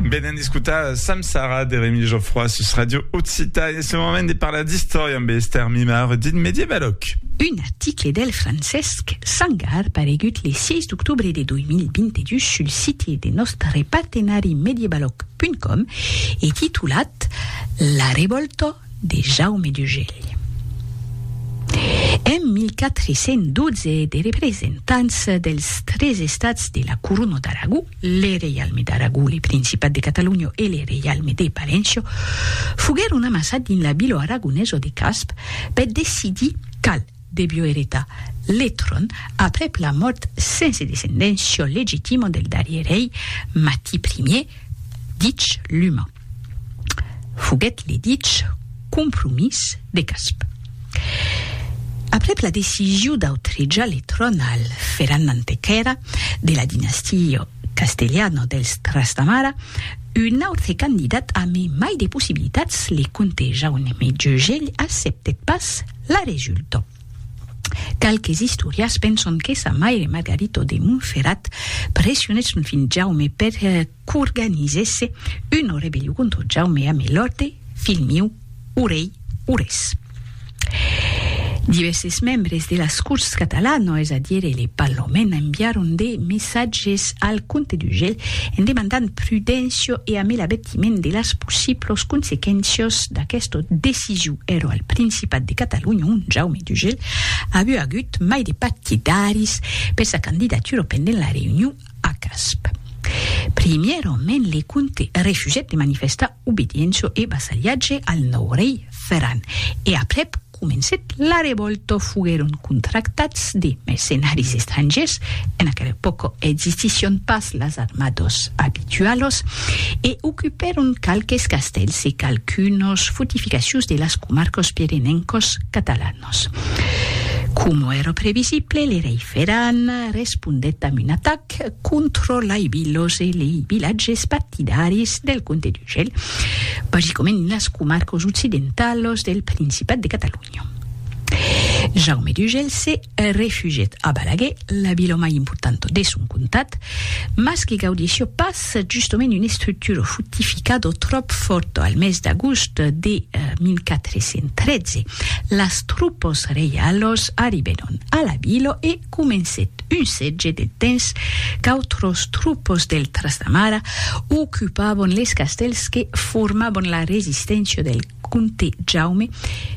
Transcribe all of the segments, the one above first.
Venen d'escutar Sam Sara de Remi Geoffroy sus Radio Occità e ce moment de parlar d'istòria amb Esther Mimar dit Medievaloc. Un article del Francesc Sangar paregut le 6 d'octobre de 2022 sul site de nòstre partenari medievaloc.com e titulat La revòlta de Jaume d'Ugèlh. En 1412 de representants dels tres estats de la Corona d'Aragó, le Reialme d'Aragó, le Principat de Catalonha e le Reialme de Palenço, foguèron amassats dins la vila aragonesa de Casp per decidir qual devió eretar le tròn aprèp la mòrt sense descendéncia legitima del darrier rei Mati Ier, dich Luma. Foguèt le dich compromís de Casp. Aprèp la decision d'autrejar le tròn al Ferran Mantequèra de la dinastia castelhana dels Trastamara, un autre candidat a me mai de possibilitats, le comte Jaume Jegell acceptèt pas la resulta. Qualques istorians penson que sa maire Margarito de Montferrat pressionèt son filh Jaume per qu'organizèsse una rebellion contra Jaume amé l'òrte, filh miu, o rei Aurès. Divèrses membres de las Corts catalanas, es a dire le Parlament, enviaron de messatges al comte d'Urgell en demandant prudéncia e amé l'avertiment de las possiblas consequéncias d'aquesta decision. Èra al Principat de Catalonha ont Jaume d'Urgell aviá agut mai de partidaris per sa candidatura pendent la reünion A Casp. Primièrament le comte refusèt de manifestar obediéncia e vassalhatge al nòu rei Ferran e aprèp comencèt la revòlta. Foguèron contractats de mercenaris estrangèrs, en aquela epòca existissián pas las armadas abitualas, e ocupèron qualques castèls e qualqu'unas fortificacions de las comarcas pirenencas catalanas. Nos. Coma èra previsible, le rei Ferran respondèt amb un atac contra lei vilas e lei vilatges partidaris del comte d'Urgell, basicament en las comarcas occidentalas del Principat de Catalonha. Jaume d'Urgell se refugièt a Balaguer, la vila mai importanta de son comtat, mas que gaudissia pas S'es justement una estructura fortificada tròp fòrta. Al mes d'agost de 1413, las tropas reialas arribèron a la vila e comencèt un sètge de temps qu'autras tropas del Trastamara ocupavan les castèls que formavan la resisténcia del Comte Jaume,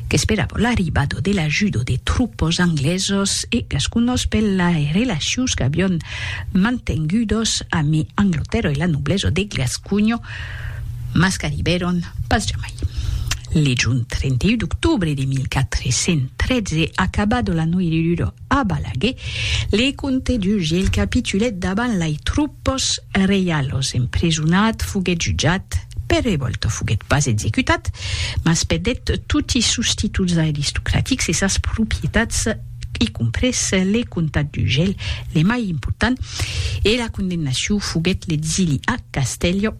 qu'esperava l'arribada de l'ajuda de tropas anglesas e gasconas per las relacions qu'avián mantengudas amé Anglatèrra e la noblesa de Gasconha, mas qu'arribèron pas jamai. Legend, 31 d'octobre de 1413, acabada la noiridura, A Balaguer, le comte d'Uge el capitulèt davant lai troupes reialos, emprisonat, foguèt jutjat, per revòlta foguèt pas executat, mas perdèt toti sos títols aristocratics e sas propietats, i comprés le comtat d'Ugel, le mai important, e la condemnacion foguèt l'exili a Castèlho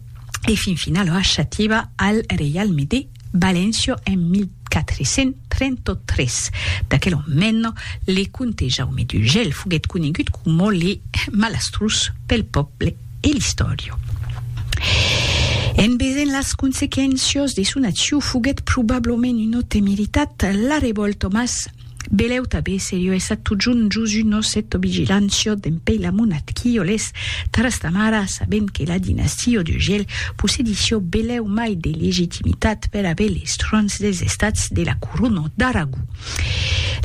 e fin finala a Xativa al reialme de. Valencio en 1433. D'aquel ommenno, le comte Jaume d'Urgell foguèt conegut coma le malastrós pel pòble e l'istòriu. En vesent las consequéncias de son acciu foguèt probablament una temeritat, la revòlta mas Belèu tabé seriu e sat totjun Josu nos et to vigilant siot d'en pei la monat qui o les taras ta mara sabent que la dinastie o de gel possedi sio belèu mai de legitimitat per aver les trons des estats de la courona d'Aragó.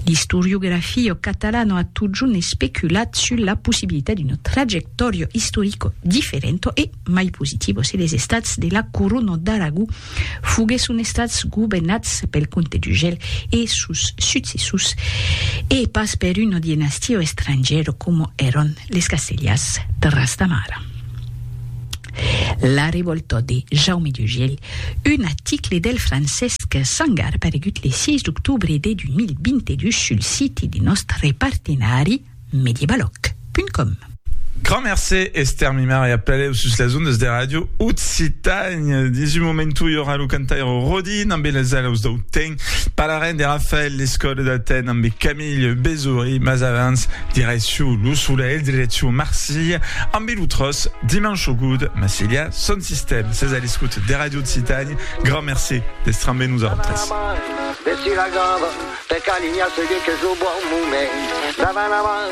L'istoriografio catalano a totjun especulat sul la possibilitat d'uno trajectorio istorico differento e mai positivos se les estats de la Corona d'Aragó foguèsson estats governats pel comte d'Urgell e sos successors e pas per una dinastia estrangèra coma èran les Castellars Trastamara. La revòlta de Jaume d'Urgell, un article del Francesc Sangar aparegut le 6 d'octobre de 2022 sul site de nòstre partenari, mediebaloc.com. Grand mercé, Esther Mimar, e apelèu sus las ondas de Ràdio Occitània. Dins un momentu i aurà lo cantaire Rodin ambe las alaus dau temps, parlarem de Rafael Lescot d'Aten ambe Camille Bezory, mas avans, direcciu lo solelh, direcciu Marsilha ambe lo tròç Dimanche au goût, Massilha son sistèm. Sètz a l'escòt de Ràdio Occitània, grand mercé d'èstre ambe nosautres. Per calinha se dit qu'es lo bon moment Davant la mar,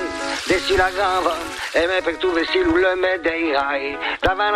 dessus la grava, e mai per tu vestir lo lume d'eirai Davant.